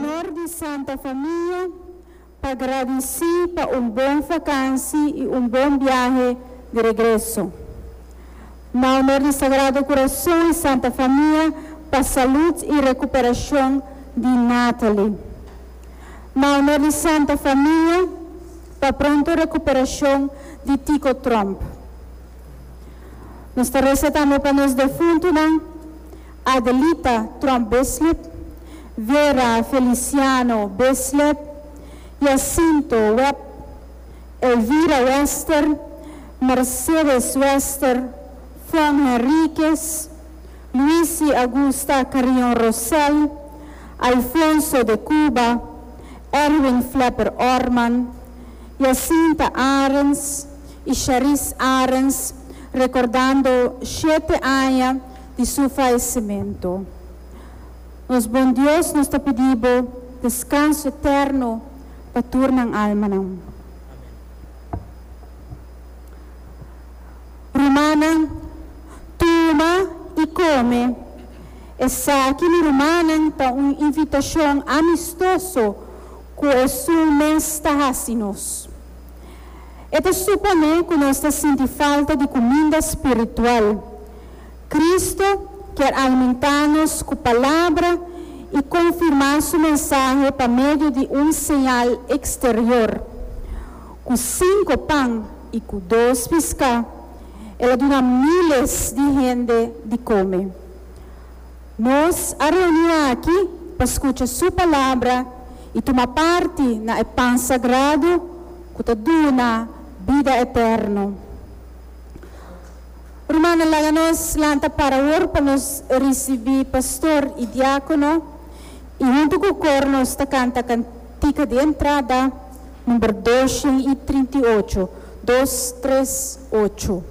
Honor di Santa Famia, Pa gradisí pa un bon fakansi i un bon biahe di regreso. Na honor di Sagrado Kurason i Santa Famia pa salud i rekuperashon di Nathalie. Na honor di Santa Famia pa pronto rekuperashon di Tico Tromp. Nos ta resa tambe pa nos defuntunan. Adelita Tromp Bislip, Vera Feliciano Bislip, Jacinto Webb, Elvira Wester, Mercedes Wester, Fon Henriquez, Luisi Augusta Carrion Rosell, Alfonso de Cuba, Erwin Flepper Orman, Jacinta Arens y Sharice Arens, recordando shete aña di su faesementu. Nos Bon Dios, nos ta pidi bo descanso eterno pa tur nan almanan. Rumannan, tuma i come. Esaki, mi rumannan, ta un invitacion amistoso cu esun mes ta haci nos. E ta suponé cu nos ta sinti falta di cuminda spiritual. Cristo kier alimentá nos cu Palabra y confirmá su mensahe pa medio di un señal exterior. Cu cinco pan y cu dos piscá El a duna miles di hende di come. Nos a reuni aki pa scucha Su Palabra y tuma parti na e pan sagrado cu ta duna bida eterno. Rumannan laga nos lanta para awor pa nos risibi pastor i diakono i huntu ku kor nos ta kanta kantika di entrada number doshe i trinta i ocho, dos, tres, ocho.